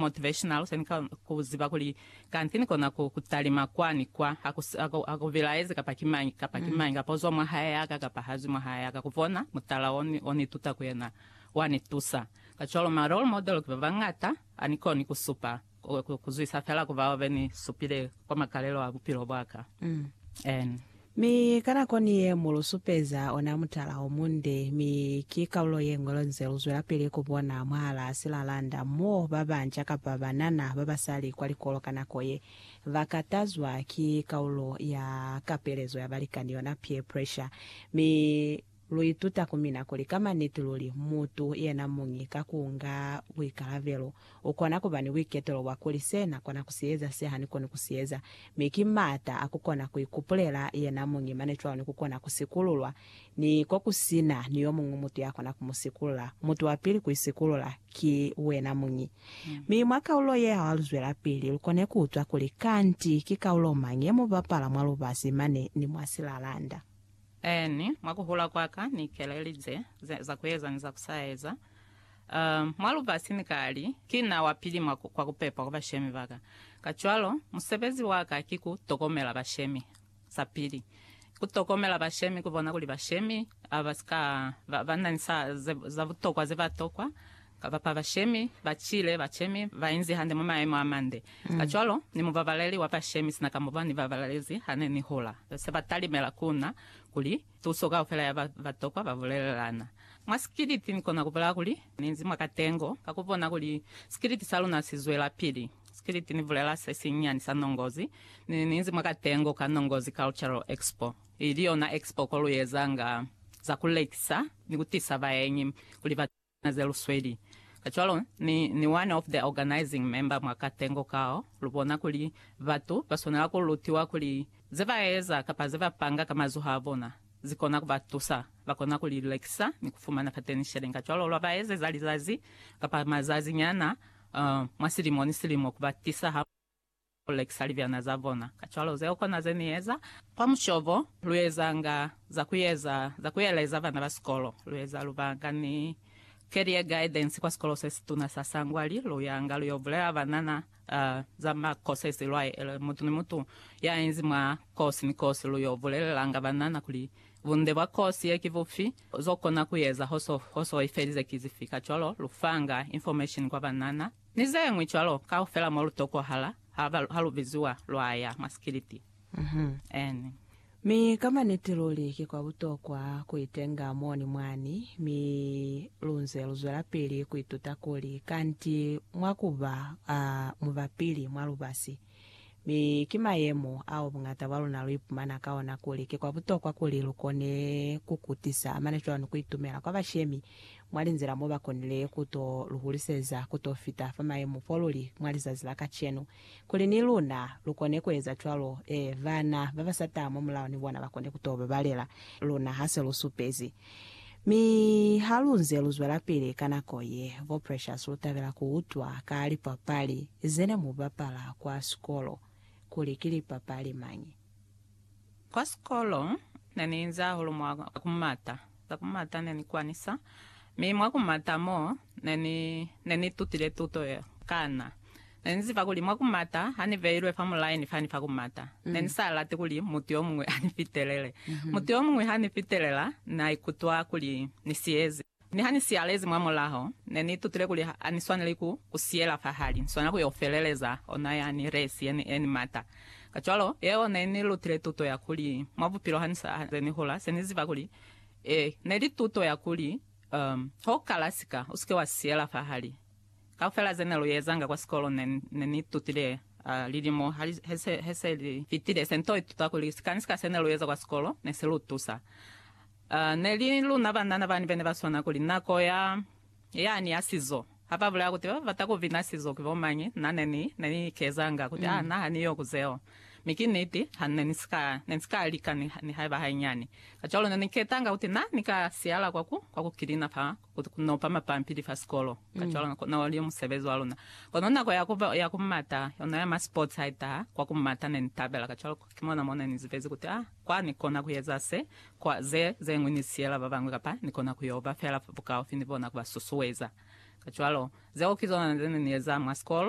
Motivational Song Ka ku ziba kuli kanti ni kona ku ku talima kwa ni kwa, ha ku, ha ku bilaezi kapa ki mañi kapa ki mañi, kapa uzwa mwa hae yaka kapa hazwi mwa hae yaka, ku bona mutala o ni, o ni tuta ku yena wa ni tusa. Kacwalo ma role model ki ba bañata, a ni koni ku supa, ku, ku zwisa fela ku bao be ni supile. Kwa makalelo a bupilo bwaka. N. Mi ka nako ni ye mu lu supeza ona mutala o munde, mi ki kalulo ye ñwi lonze lu zwelapili ku bona mwahalaa silalanda mo ba banca kapa banana ba basali kwa likolo ka nako ye ba katazwa ki kalulo ya kapelezo ya balikani, yona peer pressure. Mi Lu ituta ku mina kuli ka maniti luli mutu yena muñi ka ku nga buikalabelo u kona ku ba ni buiketelo bwa kuli se na kona ku si eza se ha ni koni ku si eza, mi ki m'ata a ku kona ku ikupulela yena muñi mane cwalo ni ku kona ku sikululwa, ni ko ku si na ni yo muñwi mutu ya kona ku mu sikulula. Mutu wa pili ku isikulula ki wena muñi. Mi mwa kaulo ye ha lu zwelapili, lu kone ku utwa kuli kanti ki kaulo mañi ye mu bapala mwa lubasi mane ni mwa silalanda. Eeni, mwa ku hula kwa ka ni ikelelize za ku eza ni za ku sa eza mwa lubasi. Ni ka li, Ki na wa pili kwa ku pepa kwa bashemi ba ka. Kacwalo, musebezi wa ka ki ku tokomela bashemi. Sa pili, ku tokomela bashemi, ku bona kuli bashemi ba si ka ba na ni za butokwa ze ba tokwa, Kabapa bashemi ba cile bacemi ba inzi hande mwa maemo a mande. Kacwalo, ni mubabaleli wa bashemi sina ka mo ba ni babalezi ha ne ni hula, se ba talimela ku na kuli tuso kaufela ya ba ba tokwa ba bulelelana. Mwa sikiliti ni kona ku bulaya kuli ni inzi mwa katengo ka ku bona kuli sikiliti sa luna si zwelapili. Sikiliti ni bulela se sinyani sa nongozi, ni ni inzi mwa katengo ka Nongozi Cultural Expo, ili yona expo ko lu ezanga za ku lekisa ni ku tisa baenyi kuli ba Na ze lusweli. Kacwalo, Ni, Ni one of the organizing member mwa katengo kao, lubona kuli batu baswanela ku lutiwa kuli ze ba eza kapa ze ba panga ka mazoho a bona, zi kona ku ba tusa. Ba kona ku li lekisa ni ku fumana fateni sheleng. Kacwalo, lwa ba ezeza lizazi kapa mazazi nyana, uh, mwa silimo ni silimo, ku ba tisa ha. Ku lekisa libyana za bona. Kacwalo zeo kona ze Ni eza. Kwa mushobo, lu ezanga za ku eza za ku eleza bana ba sikolo. Lu eza lubaka ni Career Guidance kwa Sikolo se Situna sa Sangwali. Lu yanga lu yo bulela banana za ma courses lwa ele. Mutu ni mutu ya inzi mwa kosi ni kosi, lu yo bulelelanga banana kuli bunde bwa kosi ye ki bufi, zo kona ku eza ho so i felize ki zifi. Kacwalo, lu fanga information kwa banana. Ni ze ñwi cwalo, kaufela mo lu tokohala ha, ha lu biziwa lwa ya mwa sikiliti. N. Mi ka maniti luli ki kwa butokwa ku itenga moni mwani, mi lu nze lu zwelapili ku ituta kuli kanti mwa ku ba, a, mubapili mwa lubasi. Mi ki mayemo ao buñata bwa luna lu ipumana ka ona kuli ki kwa butokwa kuli lu kone ku kutisa amana cwani ku itumela kwa bashemi mwa linzila mo ba konile ku to lu huliseza ku to fita fa mayemo fo lu li mwa lizazi la kacenu, kuli ni luna lu kone ku eza cwalo, ee, bana ba ba sata mwa mulao ni bona ba kone ku to babalela luna ha se lu supezi. Mi halunze luzwelapili ka nako ye, bo Precious lutabela kuutwa ka lipapali zene mubapala kwa sikolo, kuli ki lipapali mañi. Kwa sikolo neniinzi hahulu mwa kumata, za kumata nenikwanisa, mi mwa kumata mo, Ne ni, ne ni tutile tuto yeo. Kana. Ne ni ziba kuli mwa ku mata, ha ni beilwe fa mulaini fani fa ku mata, ne ni sa lati kuli mutu yo muñwi a ni fitelele. Mutu yo muñwi ha ni fitelela, na ikutwa kuli ni siyezi. Mi ha ni siyalezi mwa mulaho, ne ni itutile kuli ha ni swaneli ku, ku siyela fahali, ni swanela ku yo feleleza ona yani resi ye ni, ye ni mata. Kacwalo, yeo ne ni lutile tuto ya kuli, mwa bupilo ha ni sa, ha ni hula, se ni ziba kuli, ee, ne li tuto ya kuli, Um, ha u kala sika, u si ke wa si siyela fahali. Kaufela ze ne lu ezanga kwa sikolo ne, ne ni itutile, uh, lilimo ha li, he se, he se li fitile, se nto ituta kuli sika ni sika se ne lu eza kwa sikolo ne si lu tusa. Uh, ne li luna banana bani bene ba swana kuli nako ya, yani ya sizo. Ha ba bulaya kuti ba ba bata ku bina sizo ki bo mañi, na ne ni, ne ni ikezanga kuti, Ah, na ha ni yo ku zeo. Mi ki niti, ha ne ni si ka, ne ni si ka lika ni, nihaiba hainyani. Kacwalo ne ni ketanga kuti na ni ka siyala kwa ku, kwa ku kilina fa, ku, ku nopa mapampili fa sikolo. Kacwalo, na, na oli musebezi wa luna. Kono nako ya ku, ya ku mata, yona ya ma sports ha i taha, kwa ku mata ne ni tabela. Kacwalo, Ki mona mo ne ni zibezi kuti, a kwa ni kona ku eza se, kwa ze, ze ñwi ni siyela ba bañwi kapa ni kona ku yo ba fela bukaufi ni bona ku ba susueza. Kacwalo, zeo ki zona ze ne ni eza mwa sikolo.